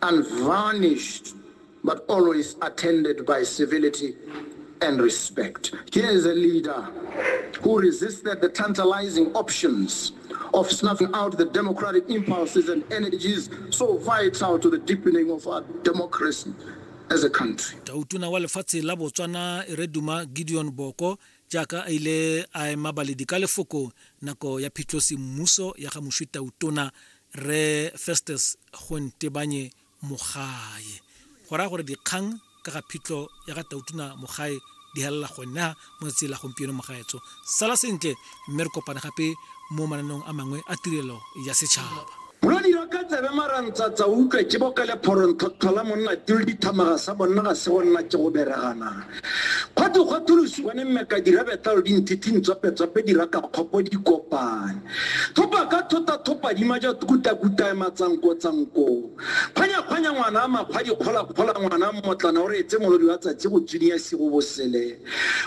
unvarnished but always attended by civility and respect. Here is a leader who resisted the tantalizing options of snuffing out the democratic impulses and energies so vital to the deepening of our democracy as a country. tautona wa lefatshe la botswana e re duma gideon boko jaaka a ile a ema baledi ka lefoko nako ya phitlhosi mmuso ya ga moswi tautona re festus go ntebanye mogae go raya gore dikgang ka ga phitlho ya ga tautuna mogae di helela gona mo tsatsi la gompieno mogaetso sala sentle mme re kopane gape mo mananeong a mangwe a tirelo ya setšhaba lo dira ka tsebe marantsatsa utlwe ke boka le phoronthotlhola monna tilo dithamaga sa bonna ga se go nna ke go bereganang Gwa twe gwa tholosiwa ne mmeka dirabetalo di nthiting tswapetswape diraka kgopo di kopane. Thopa ka thota thopa dima ja tukutakutae matsankotsanko. Kgwanyakgwanya ngwana a makgwa dikgolakgola ngwana mmotlana o re etse molodi wa tsatsi go tsuniya sigo bosele.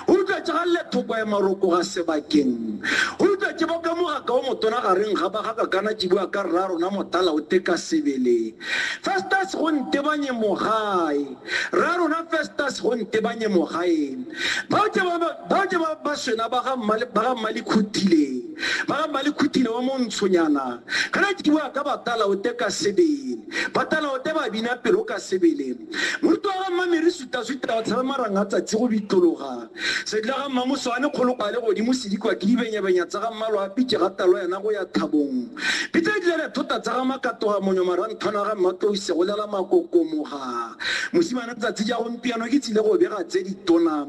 O rutwa tša ga llethoka ya marokoga sebakeng. O rutwa tše boka mogaka o motona gareng ga bagaka kana tšibua ka rra rona motala o teka sebele. Festus go ntebanye mogae. Rra rona Festus go ntebanye mo gaeng. Bao ke ba bao ke ba baswena ba ga mmale ba ga mmale khutile. Ba ga mmale khutile wa montshonyana. Kana ke bua ka batala o te ka sebele. Batala o te ba bina pelo ka sebele. Moruti wa ga mmamere suta suta o tshabe maranga tsatsi go bitologa. Sedila ga Mmamosoane kgolokwa a le godimo se dikwa ke dibenyabenya tsa ga Mmalwa a pitše ga talo yena go ya thabong. Pitsa e dila re thota tsa ga Makatoga monyo maranthwana ga Mmatlouse go lela makokomoga. Mosimane tsatsi ja gompiano ke tsile go bega tse ditona.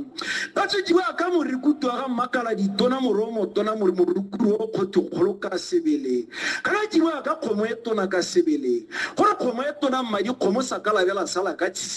Ba tswetšiwa ka morikutu wa ga Mmakala ditona moro o motona mori morukuru o kgotho kgolo ka sebele. Ka na tšiwa ka kgomo e tona ka sebele. Gore kgomo e tona mmadi kgomo sa ka labela sala ka tshisi.